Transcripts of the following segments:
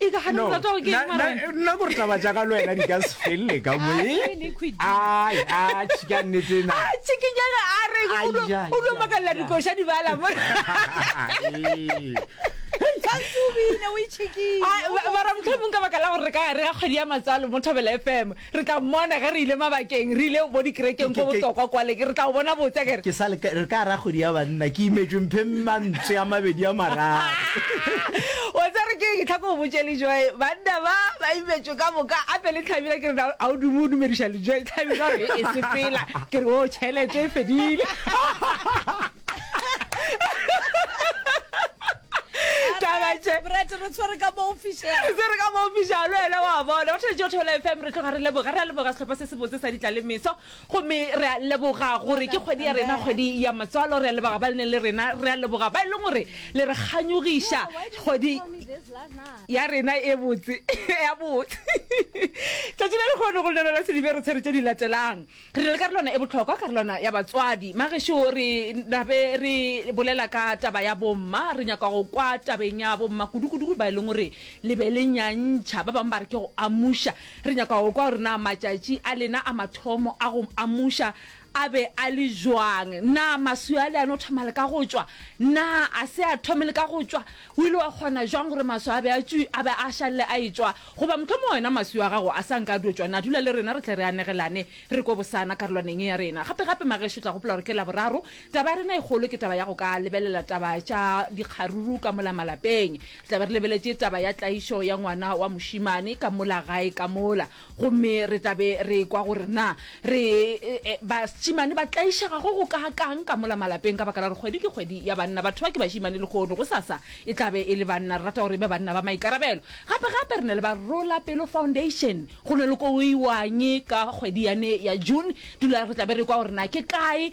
E ka gana o rata go ke eng mara wena? nna gore taba tša ka le wena di ka se felele ka mo Ah, e ne khwidi. ai a tšhika nnete na a tšhikinyana a re Ai, o ai, lo ai, makalela ai. dikoša di bala mo Tshwantse o bine o itšhikile. mara motlhomong ka baka la gore re ka gare ga kgwedi ya matsalo mo thobela fm Re tla mmona ge re ile mabakeng, re ile bo dikerekeng go botokwa kwale, ke re tla o bona botse, a ke re. Ke sa le ka, re ka ra kgwedi ya banna, ke imetšwe mpheng mantswe a mabedi a mararo. O tsere ke eng? Ke tla ko o botše, Lejoe, banna ba, ba imetšwe ka moka, a pele Thabile, ke re na ga o dume o dumediša Lejoe? Thabile a re, e sepela, ke re oo, tšhelete e fedile. tabatše brete re tshwere ka mo official se re ka mofiša le wena wa bona go thetše o theola fm re tloga re leboga re a leboga sehlopha se sebotse sa ditla le meso gomme re a leboga gore ke kgwedi ya rena kgwedi ya matswalo re a leboga ba le neng le rena re a leboga ba e leng gore le re kganyogiša kgwedi ya rena e botse ya botse tšatši le lekgono go lelona sedibe re tshwere tše di latelang Re na le karolwana e bohlokwa, karolwana ya batswadi. Magešo re nabe re bolela ka taba ya bomma. Re nyaka go kwa tabeng ya bomma kudu-kudu ba e leng gore le be le nyantšha. Ba bangwe ba re ke go amuša. Re nyaka go kwa gore na matšatši a lena a mathomo a go amuša a be a le bjang. Na maswi a le a no thoma le ka go tšwa? Na a se a thome le ka go tšwa? O ile wa kgona jwang gore maswi a be a tšwi, a be a šalle a etšwa? Goba mohlomongwe wena maswi a gago a sa nka a dio tšwa. Na dula le rena re tle re anegelane, re kwe bosana karolwaneng ye ya rena. Gape-gape, magešu, o tla gopola gore ke Laboraro. Taba ya rena e kgolo ke taba ya go ka lebelela taba tša dikgaruru ka mola malapeng. Re tla be re lebeletše taba ya tlaišo ya ngwana wa mošemane ka mola gae ka mola. Gomme re tla be re ekwa gore na re, e, bašemane ba tlaišegago go kaakang ka mola malapeng ka baka la gore kgwedi ke kgwedi ya banna. Batho ba ke bašemane lehono. Gosasa e tla be e le banna. Re rata gore e be banna ba maikarabelo. Gape, gape re na le ba Rola Pelo Foundation. Go na le ko go iwañe ka kgwedi yane ya June. Dula re tla be re ekwa gore na ke kae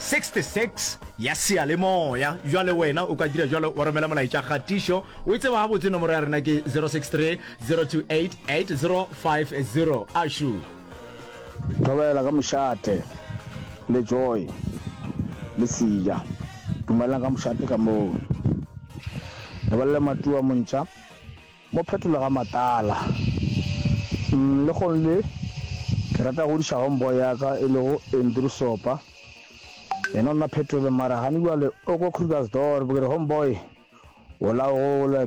66 ya seyalemoya. Bjale wena o ka dira bjalo wa romela molaetša kgatišo. O e tseba gabotse, nomoro ya rena ke 0630288050. Ašu! Thobela ka mošate le Joy le Sija. Dumelang ka mošate ka moo. Lebelela Matua Montša. Mo phetolo ga matala. Umm lekgong le ke rata godiša homeboy ya ka e lego Andrew Sopa. Yena o nna phetolong mara gane bjale o ko Krugersdorp. Ke re homeboy o la gola.